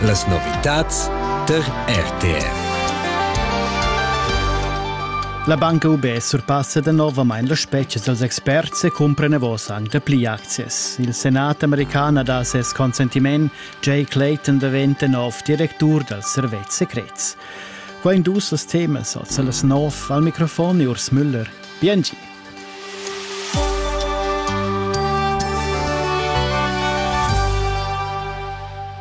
Las novitads tar RTR. La banca UB surpassa novamain la spetga dals experts e cumpra nevos anc dapli aczias. Il senat american ha dà ses consentiment. Jay Clayton daventa nov directur dals servetschs secrets. Qua in dus temas, oz las nov al microfon Urs Müller. Bien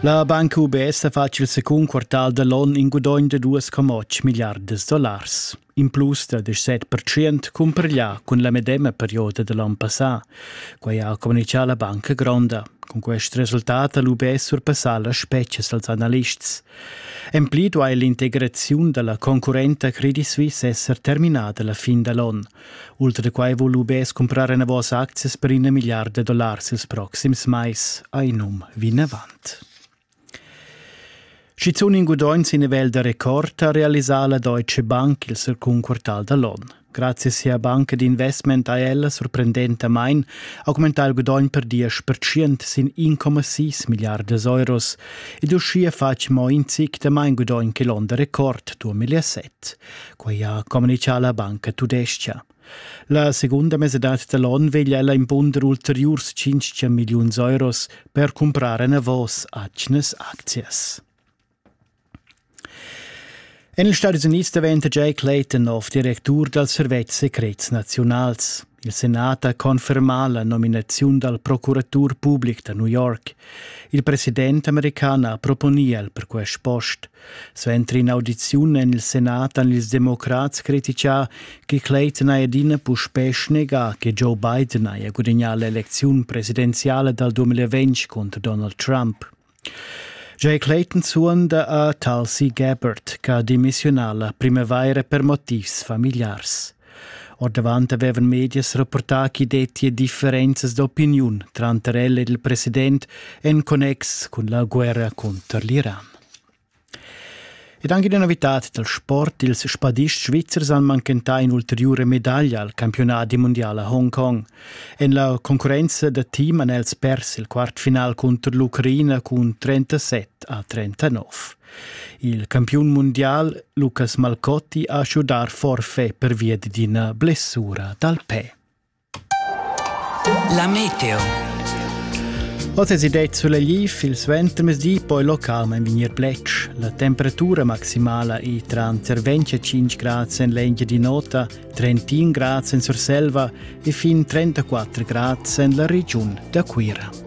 La Banca UBS ha fatg il secund quartal dall'on in gudogn da 2,8 milliardas dollars. In plus da 17% cumpareglià cun la medema perioda dall'on passà. Quai ha communitgà la banca gronda. Cun quest resultat ha l'UBS surpassà las spetgas dals analists. En pli duai l'integraziun da la concurrenta Credit Suisse esser terminada la fin da l'onn. Ultra da quai vul UBS cumprar enavos aczias per ina milliarda dollars ils proxims mais, ha in um vinavant. Schizun in gudogn sin nivel da record ha realisà la Deutsche Bank il circun quartal da l'onn. Grazie sia banca d'investment ha ella sorprendentamain augmentà il gudogn per diesch percent sin 1,6 milliardas euros ed uschia fatg mo in zic da main gudogn che l'onn da record 2007. Quai ha communitgà la banca tudescha. La segunda mesadad da l'onn veglia ella impunder ulteriurs 500 milliuns euros per cumprar enavos atgnas aczias. En ils Stadis Unids daventa Jay Clayton nov directur dal servetsch secrets naziunals. Il senat ha confermà la nominaziun dal procuratur public da New York. Il president american ha proponì el per quest post. Suenter in'audiziun en il senat han ils democrats criticà che Clayton haja adina puspè snegà che Joe Biden haja gudagnà l'elecziun presidenziale dal 2020 cunter Donald Trump. Jeu Clayton suonda a Talsi Gebert che ha demissiunà la primavaira per motivs famigliars. Ordavant avevan medias rapportà ch'i dettia differenzas d'opiniun tranter el ed il president en connex cun la guerra cunter l'Iran. Ed anche ina novitad dal sport, ils spadists svizzers han manchentà in'ulteriura medaglia al campiunadi mundial a Hongkong. En la concurrenza da team han els pers il quartfinal cunter l'Ucraina cun 37 a 39. Il campiun mundial Lucas Malcotti ha schudato forfè pervia d'ina blessura dal pe. La meteo. Oz è det sulegliv il suentermesdi, poi local en vignir plec. La temperatura maximala è tranter 25 grad en l'engia di nota, 31 grad en Surselva e fin 34 grad en la regiun da Cuira.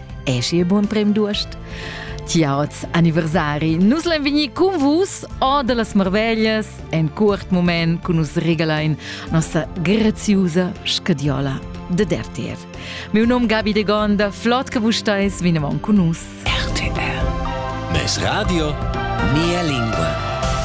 Eschi e buon prem d'uost! Ciaots anniversari! Nus lain vegnir cun vus o da las marveglias en curt moment cun nus regalain nossa graziusa scadiola da RTR. Meu nom Gabi de Gonda, flott che vus stais vinavon cun nus. RTR. Mes radio, mia lingua.